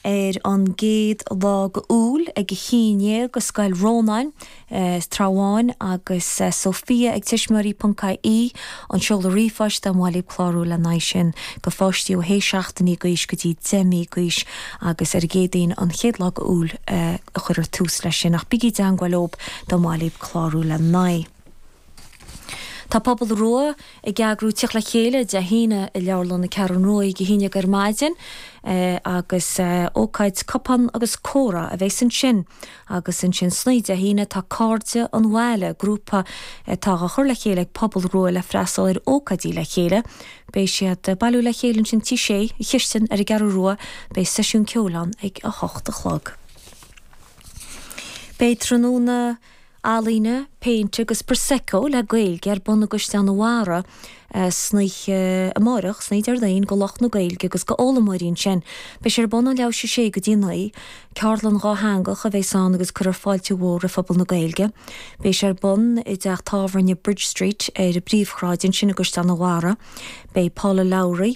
ar an gcéad lá d'Iúil ag a haon déag i Scoil Rónáin, Trá Bháin, agus Sofia ag tuismitheoirí ponc ie an seoladh ríomhphoist dá mba mhaith libh clárú le haghaidh sin go pháistí ó shé seachtainí d'aois go dtí deich mí d'aois agus ar an gCéadaoin an chéad lá d'Iúil a chuirfear tús leis sin ach bígí i dteagmháil leob dá mba mhaith libh clárú le haghaidh Tá Pobal Rua ag eagrú Tíocht le Chéile Dé hAoine i Leabharlann na Ceathrún Rua, Dé hAoine ag ar maidin, agus ócáid Cupán agus Comhrá a bheas ansin. Agus ansin san oíche Dé hAoine tá Cairde an Bhaile, grúpa atá á chur le chéile ag Pobal Rua le freastal ar ócáidí le chéile. Beidh siad ag bailiú le chéile ansin Tigh Sé, an Chistin ar an gCeathrú Rua, beidh seisiún ceoil ann ag a hocht a chlog. Beidh tráthnóna. Ealaíne, Péint agus Prosecco le Gaeilge ar bun i gCaisleán an Bharraigh san oíche amárach, san oíche Déardaoin go lucht na Gaeilge agus go fhoghlaimeoirí ansin. Beidh sé ar bun ó leathuair théis a sé go dtí a naoi. Ceardlann dhátheangach a bheas ann agus cuirfear fáilte mhór roimh phobal na Gaeilge. Beidh sé ar bun i dteach tábhairne Bridge Street ar an bpríomhshráid ansin i gCaisleán an Bharraigh. Beidh Paula Lowry.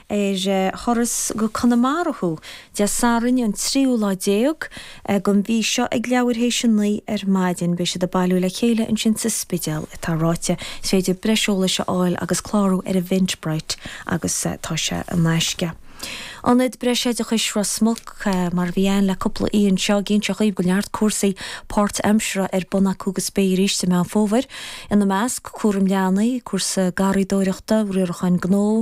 ar thuras go Conamara Thuaidh, Dé Sathairn an tríú lá déag gon mhí seo ag leathuair théis a naoi ar maidin. Beidh siad ag bailiú le chéile ansin sa Spidéal, atá ráite. Is féidir breis eolais a fháil agus clárú ar Eventbrite agus tá sé in aisce. Ionad Breis Oideachais Ros Muc, mar a bhí ann le cúpla oíche anseo, ag inseacht dhaoibh go neart cúrsaí páirtaimseartha ar bun acu agus beidh arís i Meán Fómhair, ina measc, cúram leanaí, cúrsa garraíodóireachta, riarachán gnó,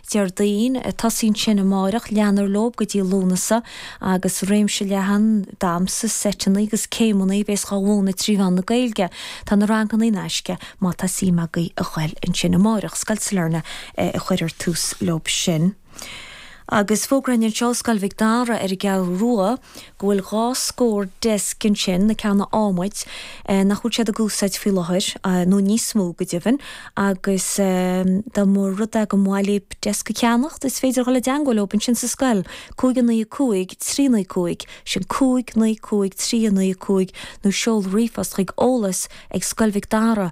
Déardaoin, tosaíonn sin amárach, leanfar leob go dtí Lúnasa agus réimse leathan damhsa, seiteanna agus céimeanna a bhéas dhá mhúineadh trí mheán na Gaeilge. Tá na ranganna in aisce má tá suim agaibh a ghoil ansin amárach. Scoil Sailearna a chuirfear tús leob sin. Agus fógra againn anseo ó Scoil Mhic Dara ar an gCeathrú Rua. go bhfuil dhá scór desk ansin, na ceanna adhmaid, nach bhfuil siad ag úsáid faoi láthair, nó níos mó, go deimhin, agus dá mba rud é go mba mhaith libh desk a cheannacht, is féidir a dhul i dteangmháil leob ansin sa scoil, cúig a naoi a cúig trí a naoi a cúig, sin cúig naoi cúig trí a naoi a cúig, nó seol ríomhphost chuig, eolas ag Scoil Mhic Dara.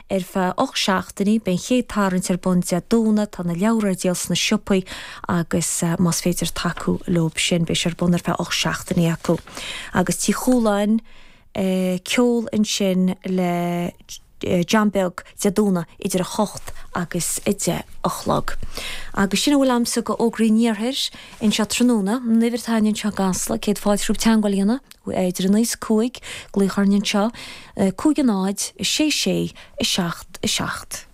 Ar feadh ocht seachtainí, beidh an chéad tarraingt ar bun Dé Domhnaigh, tá na leabhra ar díol sna siopaí agus más féidir tacú leob sin, beidh sé ar bun ar feadh ocht seachtainí acu. Agus Tigh Chualáin, ceol ansin le John Beag Dé Domhnaigh idir 8 agus 10 a chlog. Agus sin a bhfuil agamsa go fhógraí an Iarthair anseo tráthnóna, an uimhir atá againn anseo i gCasla, céad fáilte romhaibh teagmháil a dhéanamh. Idir a 9 is 5, glaoch orainn anseo, 5 a 0, 6 6, 7 7.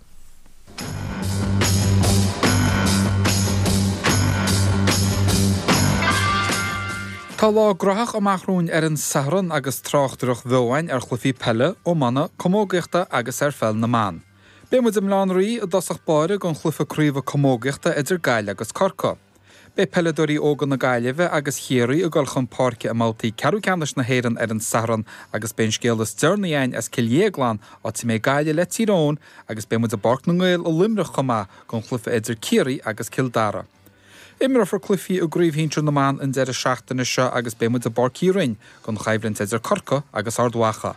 Tá lá graitheach amach romhainn ar an Satharn agus tráchtaireacht bheo againn ar chluichí peile, iomána, camógaíochta agus ar pheil na mban. Beidh muid i mBaile Átha an Rí i dtosach báire don chluiche craobhe camógaíochta idir Gaillimh agus Corcaigh. Beidh peileadóirí óga na Gaillimhe agus Chiarraí ag dul chun páirce i mbabhtaí ceathrú ceannais na hÉireann ar an Satharn agus beidh an scéal is deireanaí againn as Cill Dhéagláin, áit a mbeidh Gaillimh le Tír Eoghain, agus beidh muid i bPáirc na nGael i Luimneach chomh maith don chluiche idir Ciarraí agus Cill Dara. Imreofar cluichí i gcraobh shinsir na mban an deireadh seachtaine seo agus beidh muid i bPáirc Uí Rinn don choimhlint idir Corcaigh agus Ard Mhacha.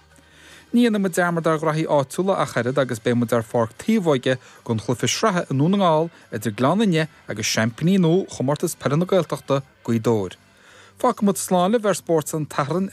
Ní dhéanfaidh muid dearmad ar ghraithí áitiúla ach oiread agus beidh muid ar Pháirc Taobhóige don chluiche sraithe i nDún na nGall idir Gleann Fhinne agus seaimpíní nua Chomórtas Peile na Gaeltachta, Gaoth Dobhair. Fágfaidh muid slán libh ar Spórt an tSathairn ag.